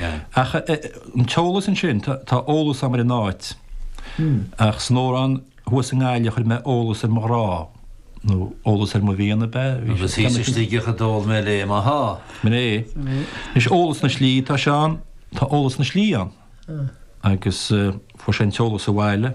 Ach an t-eolas ansin? Tá eolas agam ar an áit, ach san Órán thuas i nGaillimh a chuir mé eolas ar mo ghrá, nó eolas ar mo mhian ab ea? Agus thíos i Sligeach a d'ól mé léi mo sháith. Sin é. Anois, eolas na slí atá ann, tá eolas na slí ann, agus fuair sé an t-eolas abhaile.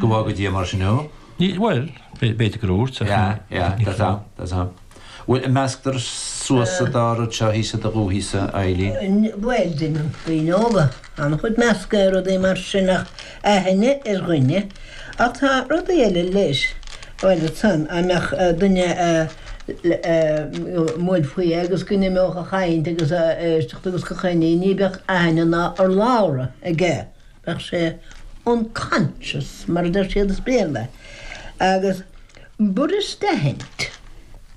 Go bhfága Dia mar sin thú. Níl, bhuel, b'fhéidir gur úirt, ach. Yeah, yeah, tá tá, tá tá. Bhuel, measctar suas an dá rud seo thíos i do ghuth thíos, a Eileen. Bhuel, deineann daoine óga an-chuid meascadh ar rudaí mar sin ach aithne ar dhuine, ach tá rudaí eile leis, bhuel, san, a mbeadh duine a, a, bhuel, faoi agus go n-imeodh a chaint agus a éisteacht agus a chuimhne, ní bheadh aithne ná urlabhra aige. Bheadh sé unconscious, mar a deir siad as Béarla, agus b'fhuirist a aithint,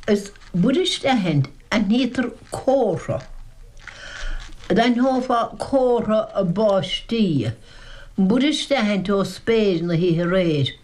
is b'fhuirist a aithint, aithnítear comhartha. D'aithneofá comhartha báistí, b'fhuirist a aithint ó spéir na hoíche aréir.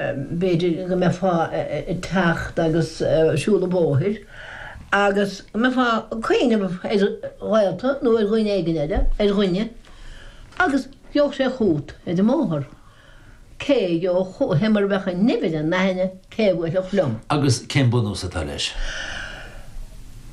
b'fhéidir go mbeifeá ag teacht agus siúl an bhóthair agus go mbeifeá ag cuimhneamh ar ghaolta nó ar dhuine éigin eile, ar dhuine, agus gheobhadh sé chugat ar an mbóthar. Cé a gheobhadh chugat? Cé mar a bheadh an nimh ar an aithne? Cé a bhuailfeadh liom? Agus cén bunús atá leis?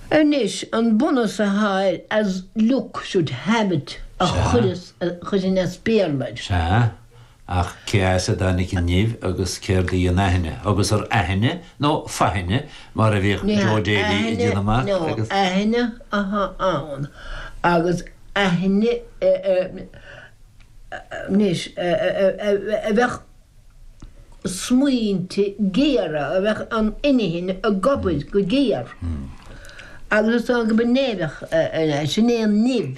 Anois, an bunús atá air, as luck should have it, a chuirfinn as Béarla air. Sea. Ach cé as a dtáinig an nimh agus céard í an aithne? Agus ab aithne nó faithne mar a bhíodh Joe Daly ag déanamh amach? Ní aithne ná faithne atá ann agus aithne anois a bheadh smaointe géara, a bheadh an inchinn ag obair go géar agus is dóigh go mba nimh é, sin é an nimh.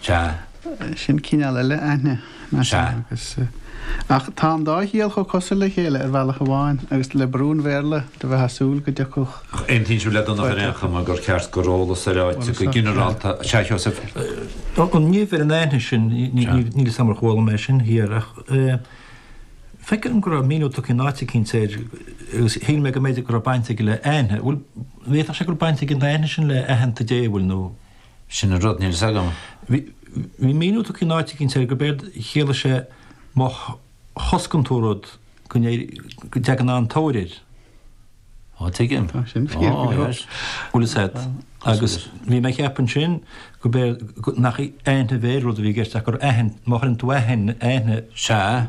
Sea. Sin cineál eile aithne, nach ea? Sea. Agus, eh, ach tá an dá chiall chomh cosuil le chéile ar bhealach amháin, agus le brú an Bhéarla, do bheifeá ag súil go dtiocfadh, Ach aontaíonn sibh le Donncha ar aon chuma gur cheart gur eolas ar áit go ginearálta, sea, a Sheosaimh? An nimh ar an aithne sin, níl 'fhios a'm ar chuala mé sin thiar, ach, eh, feicim go raibh míniú tugtha in áit eicínt air, agus shíl mé go mb'fhéidir go raibh baint aige le aithne, bhfuil, bhféadfadh sé go bhfuil baint ag an aithne sin le aitheanta Dé, bhfuil, nó? Sin an rud, níl fhios agam. Bhí míniú tugtha in áit eicínt air gurb éard a chiallaigh sé má choscann tú rud go dteagann tóir air. Á, tuigim. Á, sin an chiall go leor. Bhuel is ea. Agus bhí mé ag ceapadh ansin gurb éard, nach aithne ar rud a bhí i gceist ach gur aithne, má chuireann tú aithne, aithne. Sea.